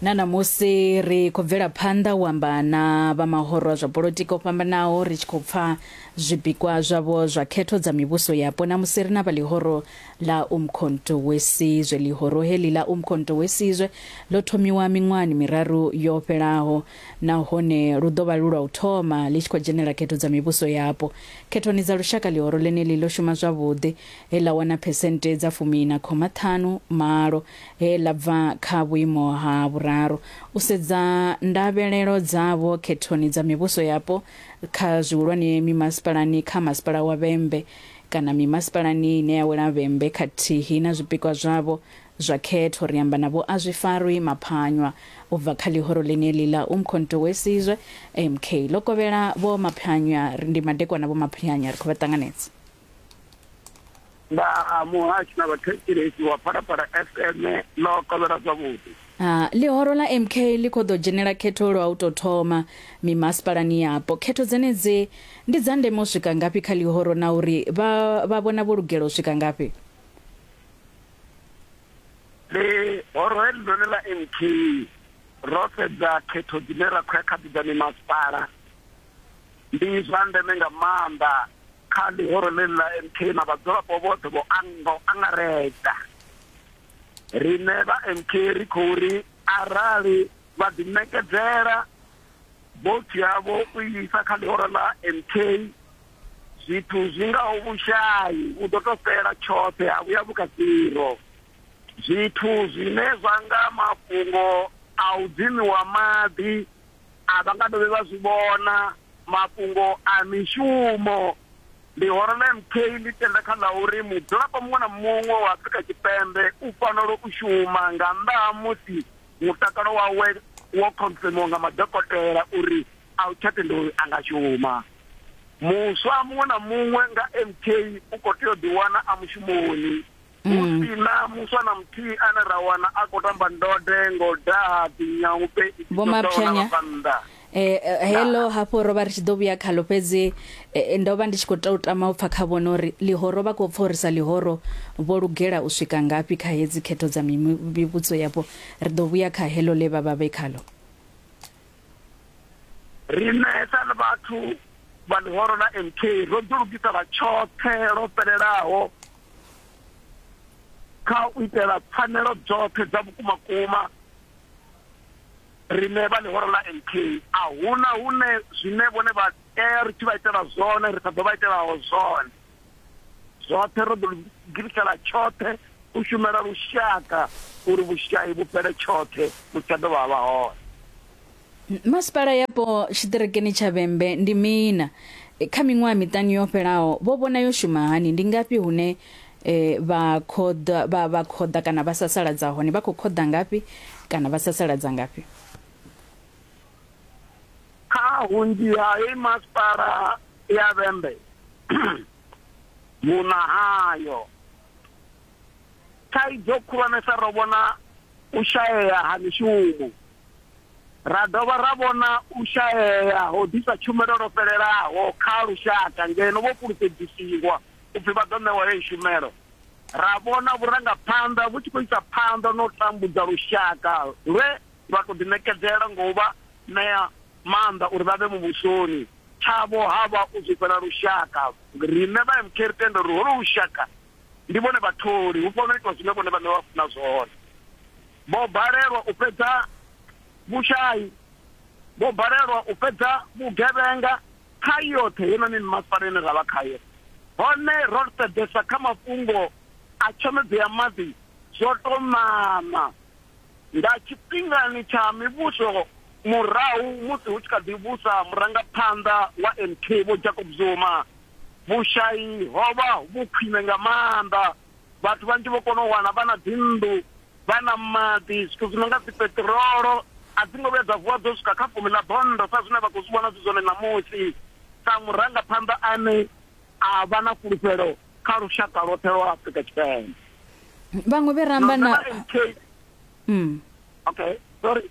na ṋamusi ri khou bvela phanḓa u amba na vha mahoro a zwa polotiki o fhambanaho ri tshi khou pfa zwibikwa zwavho zwa khetho dza mivhuso yapo ṋamusi ri na vha ḽihoro ḽa umkhonto wesizwe ḽihoro heḽi ḽa umkhonto wesizwe ḽo thomiwa miṅwahani miraru yo fhelaho nahone lu ḓo vha lu lwa u thoma ḽi tshi khou dzhenela khetho dza mivhuso yapo khethoni dza lushaka ḽihoro ḽeneḽi ḽo shuma zwavhuḓi he ḽa wana phesenthe dza fumiiṋa khoma ṱhanu malo he ḽa bva kha vhuimo ha vhuraru u sedza ndavhelelo dzavho khethoni dza mivhuso yapo kha zwihulwane mimasipalani kha Masipala wa Vhembe kana mimasipalani ine ya wela Vhembe khathihi na zwipikwa zwavho zwa khetho. Ri amba na Vho Azwifarwi Maphanywa u bva kha ḽihoro ḽeneḽi ḽa Umkhonto we Sizwe, MK. Ḽo kovhela Vho Maphanywa, ri ndi madekwana Vho Maphanywa ri khou vha ṱanganedza. nga ha muhasho na vhathetshelesi wa phalaphala fm ḽo kovhela zwavhuḓi Ah, ḽihoro ḽa mk ḽi khou ḓo dzhenela khetho lwa u tou thoma mimasipalani yapo khetho dzenedzi ndi dza ndeme u swika ngafhi kha ḽihoro na uri vha vha vhona vho lugela u swika ngafhi ḽihoro heḽi ḽone ḽa mk ro sedza khetho dzine ra khou ya kha ḓi dza mimasipala ndi zwa ndeme nga maanḓa Kha ḽihoro ḽe ḽa MK na vhadzulapo vhoṱhe vho nga u angaredza, riṋe vha MK ri khou ri arali vha ḓiṋekedzela vothi yavho u i isa kha ḽihoro ḽa MK, zwithu zwi ngaho vhushai vhu ḓo tou fhela tshoṱhe ha vhuya vhu kha ziro. Zwithu zwine zwa nga mafhungo a u dzimiwa maḓi A vha nga dovhi vha zwi vhona. Mafhungo a mishumo. Ndi horo ḽa MK ḽi tenda kha ḽa uri mudzulapo muṅwe na muṅwe wa Afrika Tshipembe u fanela u shuma nga nnḓa ha musi mutakalo wawe wo khonfemiwa nga madokotela uri a u tsha tenda uri a nga shuma. Muswa muṅwe na muṅwe nga MK u khou tea u ḓiwana a mushumoni. Hu si na muswa na muthihi ane ra wana a khou tamba ndode nga u daha ḓinyaupe i Vho ḓiṱoḓaho na Maphyanya. vhabvannḓa. Eh, eh, hello hafho ro vha ri tshi ḓo vhuya khalo fhedzi eh, ndo vha ndi tshi khou tou tama u pfa kha vhone uri ḽihoro vha khou pfa uri sa ḽihoro vho lugela u swika ngafhi kha hedzi khetho dza mimi- mivhudzo yapo ri ḓo vhuya kha helo ḽe vha vha vhe khalo Riṋe sa ḽi vhathu vha ḽihoro ḽa MK ro ḓilugisela tshoṱhe lwo fhelelaho kha u itela pfanelo dzoṱhe dza vhukumakuma rine vha ḽihoro ḽa mk a huna hune zwine vhone vha tea ri tshi vha itela zwone ri sa ḓo vha itelaho zwone zwoṱhe ro ḓo gilisela tshoṱhe u shumela lushaka uri vhushayi vhu fhele tshoṱhe vhu tsha dovha vha hone Masipala yapo tshiṱirikini tsha Vhembe ndi miina. Kha miṅwaha miṱanu yo fhelaho vho vhona yo shuma hani? Ndi ngafhi hune eh, vha khoḓa vha vha khoḓa kana vha sasaladza hone? Vha khou khoḓa ngafhi kana vha sasaladza ngafhi? kha hunzhi ha heyi masipala ya vhembe vhuna hayo thaidzo khulwanesa ro vhona u shayea ha mishumo Ra dovha ra vhona u shayea ha u ḓisa tshumelo lwo fhelelaho kha lushaka ngeno vho fhulufhedzisiwa u pfi vha ḓo ṋewa heyi tshumelo. Ra vhona vhurangaphanḓa vhu tshi khou isa phanḓa na u tambudza lushaka lwe lwa tou ḓiṋekedzela nga u vha ṋea maanḓa uri vha vhe muvhusoni. Tshavho ha vha u zwifhela lushaka. Riṋe vha MK ri tenda uri holu lushaka ndi vhone vhatholi, hu fanela u itwa zwine vhone vhaṋe vha funa zwone. Vho balelwa u fhedza vhushai, vho balelwa u fhedza vhugevhenga kha yoṱhe heinoni mimasipala ine ra vha khayo. Hone ro sedzesa kha mafhungo a tshomedzo ya maḓi zwo tou ṋaṋa. Nga tshifhingani tsha mivhuso murahu musi hu tshi kha ḓi vhusa murangaphanḓa wa MK Vho Jacob Zuma, vhushai ho vha vhu khwine nga maanḓa vhathu vhanzhi vho kona u wana vha na dzinnḓu vha na maḓi zwithu zwi no nga dzi peṱirolo a dzi ngo vhuya dza vuwa dzo swika kha fumi ḽa bonndo sa zwine vha khou zwi vhona zwi zwone ṋamusi sa murangaphanḓa ane a vha na fhulufhelo kha lushaka lwoṱhe lwa afurika tshipembe vhaṅwe vhe ramba na mm. okay sorry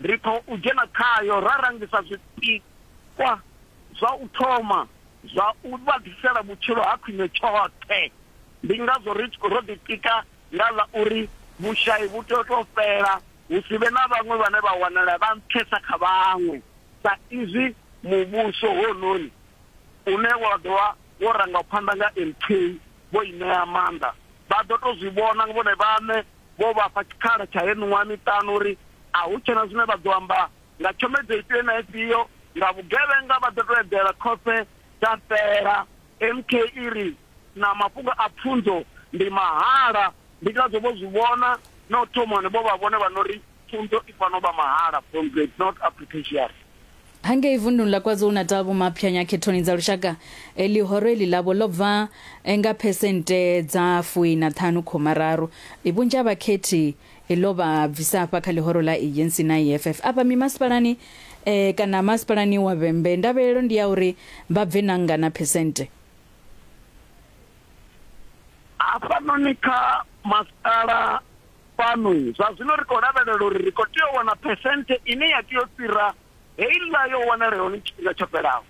Ri khou dzhena khayo ra rangisa zwipikwa zwa u thoma zwa u vha ḓisela vhutshilo ha khwine tshoṱhe. Ndi ngazwo ri tshi ro ḓitika nga ḽa uri vhushai vhu tea u tou fhela, hu si vhe na vhaṅwe vhane vha wanala vha nṱhesa kha vhaṅwe, sa izwi muvhuso hounoni une wa ḓo vha wo rangwa phanḓa nga MK vho i ṋea maanḓa vha ḓo tou zwi vhona vhone vhaṋe. vho vha fha tshikhala tsha heyo miṅwaha miṱanu uri a hu tshena zwine vha ḓo amba nga tshomedzo ifhio na ifhio nga vhugevhenga vha ḓo tou eḓela khofhe dza fhela mk iri na mafhungo a pfunzo ndi mahala ndi ngazwo vho zwi vhona na u thomani vho vha vhone vha no ri Pfunzo i fanela u vha mahala from grade not up to tertiary. Ha ngei vunḓuni ḽa KwaZulu-Natal, Vho Maphanya khethoni dza lushaka, e, ḽihoro eḽi ḽavho ḽo bva e, nga phesenthe dza fui na ṱhanu khoma raru. E, vhunzhi ha vhakhethi e, ḽo vha bvisa hafha kha ḽihoro ḽa Ejensi na EFF. Afha mimasipalani e, kana masipalani wa Vhembe, ndavhelelo ndi ya uri vha bve na nga na phesenthe. Hafhanoni kha masipala Fhano zwa zwino ri khou lavhelela uri ri khou tea u wana phesenthe ine ya tea u fhira heiḽa yo wanala hone tshifhinga tsho fhelaho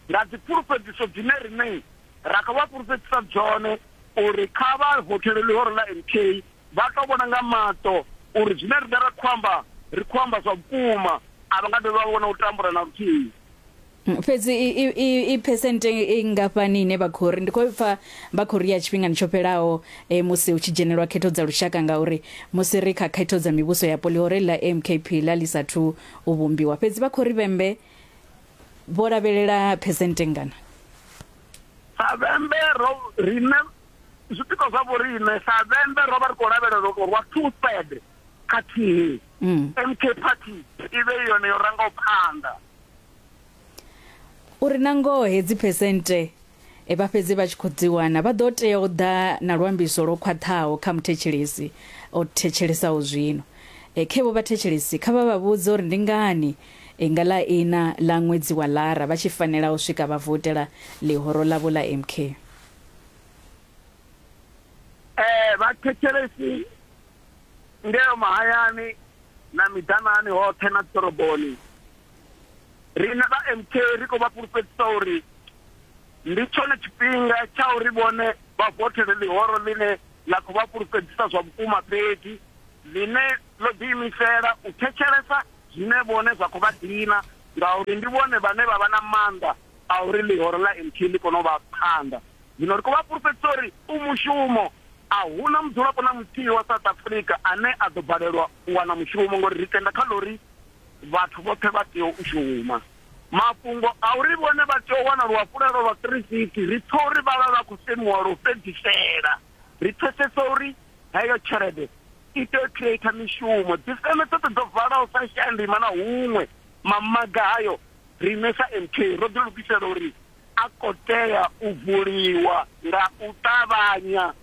nga dzifhulufhedziso dzine riṋe ra khou vha fhulufhedzisa dzone uri kha vha vothele ḽihoro ḽa MK vha tou vhona nga maṱo uri zwine riṋe ra khou amba ri khou amba zwa vhukuma, a vha nga dovhi vha vhona u tambula na luthihi. fhedzi i phesenthe i ngafhani ine vha khou ri ndi khou pfa vha khou ri ya tshifhingani tsho fhelaho e, musi hu tshi dzhenelwa khetho dza lushaka ngauri musi ri kha khetho dza mivhuso yapo ḽihoreli ḽa mkp ḽa ḽi sathu u vhumbiwa fhedzi vha khou ri vhembe vho lavhelela phesenthe ngana sa vhembe ro rine zwipiko zwa vhorine sa vhembe ro vha ri khou lavhelela u tou rwa two third khathihi mm. mk party i vhe yone yo rangaho phanḓa uri na ngoho hedzi phesente e vha fhedzi vha tshi khou dzi wana vha ḓo tea u ḓa na luambiso lwo khwaṱhaho kha muthetshelesi o thetshelesao zwino e khe vho vhathetshelesi kha vha vha vhudze uri ndi ngani e nga ḽa ina ḽa ṅwedzi wa lara vha tshi fanela u swika vha votela ḽihoro ḽavho ḽa mk um vhathetshelesi Ngeo mahayani na miḓanani hoṱhe na dziḓoroboni, riṋe vha MK ri khou vha fhulufhedzisa uri ndi tshone tshifhinga tsha uri vhone vha vothele ḽihoro ḽine ḽa khou vha fhulufhedzisa zwa vhukuma fhedzi, ḽine ḽo ḓiimisela u thetshelesa zwine vhone zwa khou vha dina ngauri ndi vhone vhane vha vha na maanḓa a uri ḽihoro ḽa MK ḽi kone u vha phanḓa. Zwino ri khou vha fhulufhedzisa uri u mushumo. A hu na mudzulapo na muthihi wa South Africa ane a ḓo balelwa u wana mushumo ngauri ri tenda kha ḽa uri vhathu vhoṱhe vha tea u shuma. Mafhungo a uri vhone vha tea u wana luhafhulelo lwa ṱhirifiki ri pfa uri vha vha vha khou semiwa lwo fhedzisela. Ri pfesesa uri heyo tshelede i tea u creator mishumo. Dzifeme dzoṱhe dzo valaho sa Shayandima na huṅwe, mamaga hayo riṋe sa MK ro ḓilugisela uri a khou tea u vuliwa nga u ṱavhanya.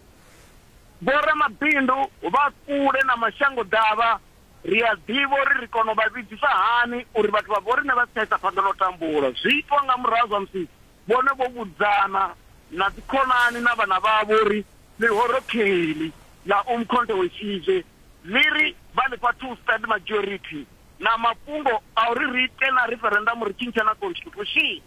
Vhoramabindu vha kule na mashangoḓavha ri a ḓivha uri ri kona u vha vhidzisa hani uri vhathu vha vhoriṋe vha si tsha isa phanḓa na u tambula. Zwi itwa nga murahu ha zwamusi vhone vho vhudzana na dzikhonani na vhana vhavho uri ḽihoro kheli ḽa Umkhonto we Sizwe ḽi ri vha ḽi fha two-third majority na mafhungo a uri ri ite na referendamu ri tshintshe na constitution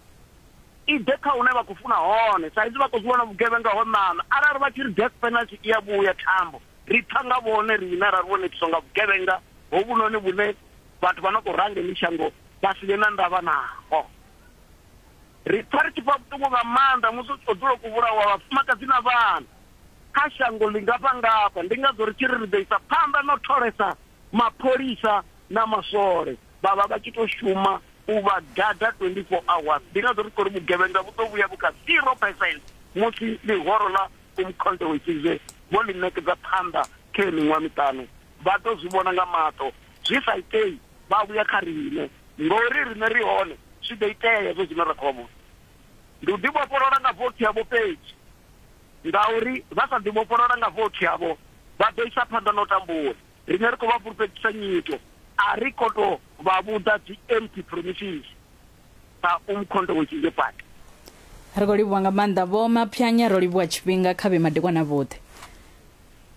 i ḓe kha hune vha khou funa hone saizwi vha khou zwi vhona vhugevhenga ho ṋaṋa arali vha tshi ri death penalty i ya vhuya thambo ri pfa nga vhone riṋe arali vhone itiswa nga vhugevhenga hovhunoni vhune vhathu vha no khou ranga ḽi shango vha si vhe na ndavha naho ri pfa ri tshi pfa vhuṱungu nga maanḓa musi u tshi khou dzula ku vhulawa vhafumakadzi na vhana kha shango ḽingafhangafha ndi ngazwo ri tshi ri ri ḓo isa phanḓa no tholesa mapholisa na maswole vha vha vha tshi tou shuma u vha gada 24 hours. Ndi ngazwo ri tshi khou ri vhugevhenga vhu ḓo vhuya vhu kha zero percent musi ḽihoro ḽa Umkhonto Wesizwe vho ḽi ṋekedza phanḓa kha iyo miṅwaha miṱanu. Vha ḓo zwi vhona nga maṱo, zwi sa itei vha vhuya kha riṋe ngauri riṋe ri hone, zwi ḓo itea hezwo zwine ra khou vha vhudza. Ndi u ḓivhofholola nga vothi yavho fhedzi ngauri vha sa ḓivhofholola nga vothi yavho vha ḓo isa phanḓa na u tambula. riṋe ri khou vha fhulufhedzisa nyito. A ri khou tou vha vhudza dzi empty promises dza Umkhonto Wesizwe Party. Ri khou livhuwa nga maanḓa Vho Maphyanya, ro livhuwa tshifhinga kha vhe madekwana vhoṱhe.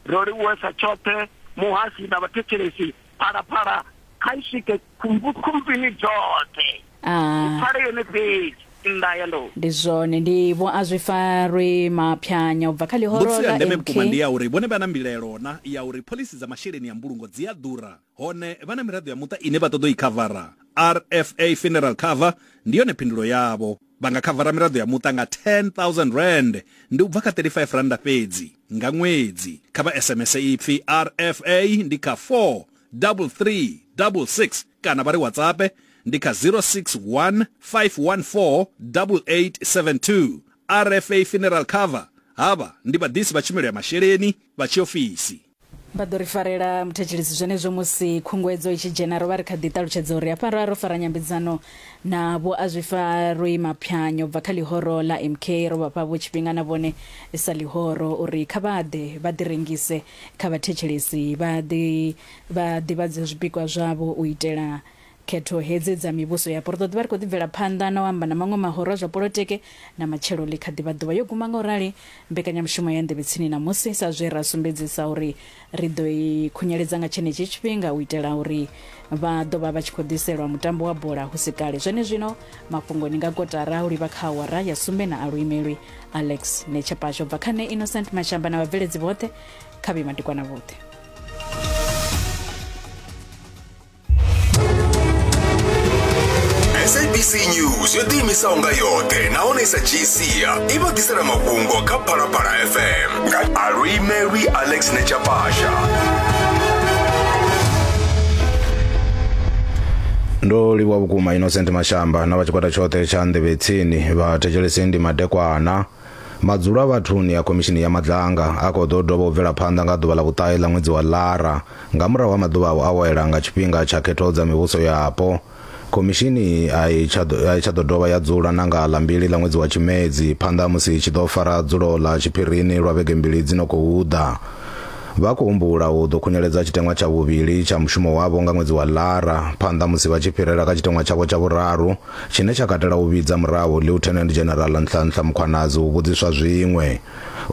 Ro livhuwesa tshoṱhe muhaswi na vhathetshelesi, Phalaphala kha i swike. khumbukhumphini dzoṱhe ah. pfale yone fhedzi nnḓa ya ndovu ndi zwone ndi vho a zwi farwi maphyanya u bva kha ḽihoro mbudziso ya ndeme vhukuma ndi ya uri vhone vha na mbilaelo na ya uri phoḽisi dza masheleni ya mbulungo dzi a ḓura hone vha na miraḓo ya muṱa ine vha ṱoḓa u i khavara rfa funeral cover ndi yone phindulo yavho vha nga khavara miraḓo ya muṱa nga 10000 rand ndi u bva kha 35 randa fhedzi nga ṅwedzi kha vha sms ipfi rfa ndi kha 4 3366 kana vha ri whatsapp ndi kha 061 514 8872 rfa funeral cover havha ndi vhaḓisi vha tshumelo ya masheleni vha tshiofisi vha ḓo ri farela muthetshelesi zwenezwo musi khunguwedzo i tshi dzhena ro vha ri kha ḓi ṱalutshedza uri hafha ra ro fara nyambedzano na vho a zwi fa ro ima phyanyo bva kha ḽihoro ḽa mk ro vha fha vho tshifhinga na vhone sa ḽihoro uri kha vha ḓe vha ḓirengise Kha vhathetshelesi vha ḓi vha ḓivhadze zwipikwa zwavho u itela khetho hedzi dza mivhuso yapo. Ri ḓo ḓi vha ri khou ḓi bvela phanḓa na u amba na maṅwe mahoro a zwa poloteke na matshelo ḽi kha ḓi vha ḓuvha. Yo guma nga u rali mbekanyamushumo ya Nḓevhe Tsini ṋamusi sa zwe ra sumbedzisa uri ri ḓo i khunyeledza nga tshenetshi tshifhinga u itela uri vha ḓo vha vha tshi khou ḓiselwa mutambo wa bola hu si kale. Zwenezwino mafhungoni nga kotara u livha kha awara ya sumbe na a luimelwi alex nechapasho bva kha ne innocent mashamba na vhabveledzi vhoṱhe kha vhuimadikwana vhoṱhe sabc news yo ḓiimisaho nga yoṱhe nahone i sa dzhii sia i vha ḓisela mafhungo kha phalaphala fm nga alwi mary alex nechapasha ndo livhuwa vhukuma innocent mashamba na vha tshikwata tshoṱhe tsha nḓevhetsini Vhathetshelesi ndi madekwana. Madzulo a vhathuni a Khomishini ya Madlanga a khou ḓo dovha u bvela phanḓa nga ḓuvha ḽa vhuṱahe ḽa ṅwedzi wa Lara nga murahu ha maḓuvha a u awela nga tshifhinga tsha khetho dza mivhuso yapo. Khomishini a i tsha ḓo a i tsha ḓo dovha ya dzula na nga ḽa mbili ḽa ṅwedzi wa Tshimedzi phanḓa ha musi i tshi ḓo fara dzulo ḽa tshiphirini lwa vhege mbili dzi no khou ḓa. Vha khou humbula u ḓo khunyeledza tshiteṅwa tsha vhuvhili tsha mushumo wavho nga ṅwedzi wa Lara phanḓa musi vha tshi fhirela kha tshiteṅwa tshavho tsha vhuraru tshine tsha katela u vhidza murahu Lieutenant General Nhlanhla Mkhwanazi u vhudziswa zwiṅwe.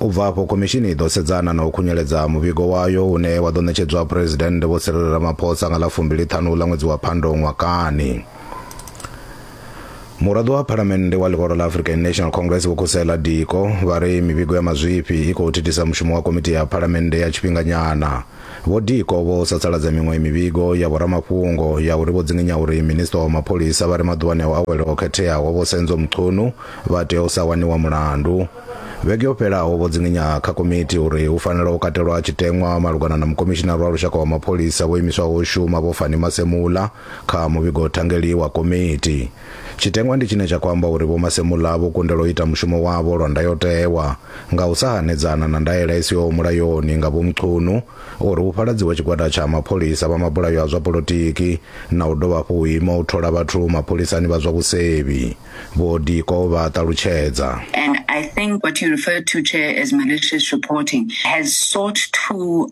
U bva afho, khomishini i ḓo sedzana na u khunyeledza muvhigo wayo une wa ḓo ṋetshedzwa Phresidennde Vho Cyril Ramaphosa nga ḽa fumbili-ṱhanu ḽa ṅwedzi wa Phando ṅwakani. Muraḓo wa Phalamennde wa ḽihoro ḽa African National Congress Vho Khusela Diko vha ri mivhigo ya mazwifhi i khou thithisa mushumo wa komiti ya Phalamennde ya tshifhinganyana. Vho Diko vho sasaladza miṅwe ya mivhigo ya vhoramafhungo ya uri vho dzinginya uri Minisiṱa wa Mapholisa vha re maḓuvhani a u awela ho khetheaho Vho Senzo Mchunu vha tea u sa waniwa mulandu. Vhege yo fhelaho vho dzinginya kha komiti uri hu fanela u katelwa tshiteṅwa malugana na Mukomishinari wa Lushaka wa Mapholisa vho imiswaho u shuma Vho Fannie Masemola kha muvhigo thangeli wa komiti. Tshiteṅwa ndi tshine tsha khou amba uri Vho Masemola vho kundelwa u ita mushumo wavho lwa ndayotewa nga u sa hanedzana na ndaela i siho mulayoni nga Vho Mchunu uri hu fhaladziwe tshigwada tsha mapholisa vha mabulayo a zwa polotiki na u dovha hafhu hu ima u thola vhathu mapholisani vha zwa vhusevhi, Vho Diko vha a ṱalutshedza. And I think what you refer to Chair as malicious reporting has sought to.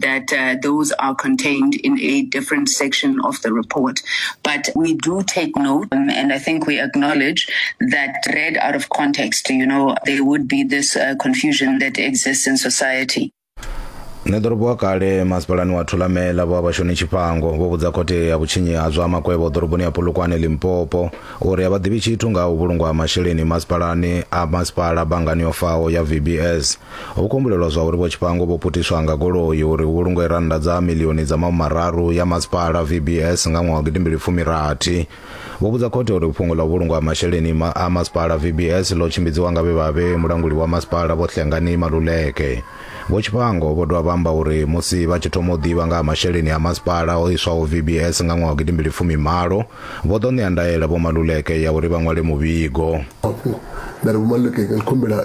that uh, those are contained in a different section of the report. But we do take note, um, and I think we acknowledge that read out of context, you know, there would be this uh, confusion that exists in society. nṋe ḓorobo wa kale masipalani wa thulamela vho vhashoni tshifhango vho vhudza khothe ya vhutshinyi ha zwa makwevho ḓoroboni ya polokwane limpopo uri a vha ḓivhi tshithu nga ha u vhulungwa ha masheleni masipalani a masipala bangani yo faho ya vbs Ho kumbulelwa zwa uri Vho Tshifhango vho putiswa nga goloi uri hu vhulungwe rannda dza miḽioni dza mahumararu ya masipala, VBS, nga ṅwaha wa gidimbili fumi rathi. Vho vhudza khothe uri fhungo ḽa u vhulungwa ha masheleni a masipala, VBS, ḽo tshimbidziwa nga vhe vha vhe mulanguli wa masipala Vho Hlengani Maluleke. Vho Tshifhango vho dovha vha amba uri musi vha tshi thoma u ḓivha nga ha masheleni a masipala o iswaho VBS nga ṅwaha wa gidimbili fumi malo, vho ḓo ṋea ndaela Vho Maluleke ya uri vha ṅwale muvhigo. Hafhu nda ri, Vho Maluleke, ndi khou humbela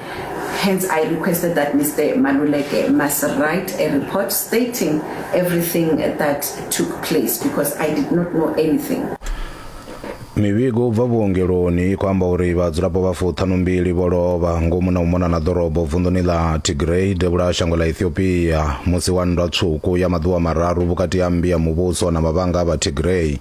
Hence, I requested that Mr. Maluleke must write a report stating everything that took place because I did not know anything. mivhigo u bva vhuongeloni i khou amba uri vhadzulapo vha fuṱhanumbili vho lovha ngomu na u mona na ḓorobo vunḓuni ḽa tigrey devhula ha shango ḽa ethiopia musi wa nndwa tswuku ya maḓuvha mararu vhukati ha mmbi ya muvhuso na mavhanga a vha tigrey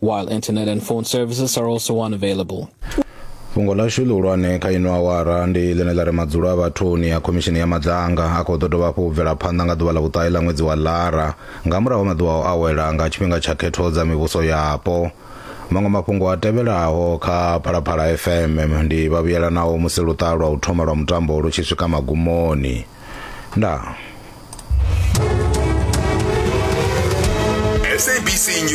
while internet and phone services are also unavailable. fhungo ḽashu ḽihulwane kha ino awara ndi ḽine ḽa ri madzulo a vhathuni a khomishini ya madzanga a khou ḓo dovha hafhu u bvela phanḓa nga ḓuvha ḽa vhuṱahe ḽa ṅwedzi wa ḽara nga murahu ha maḓuvha o awela nga tshifhinga tsha khetho dza mivhuso yapo maṅwe mafhungo a tevhelaho kha phalaphala fm ndi vhavhuyelanaho musi luṱa lwa u thoma lwa mutambo lu tshi swika magumoni nda sabc news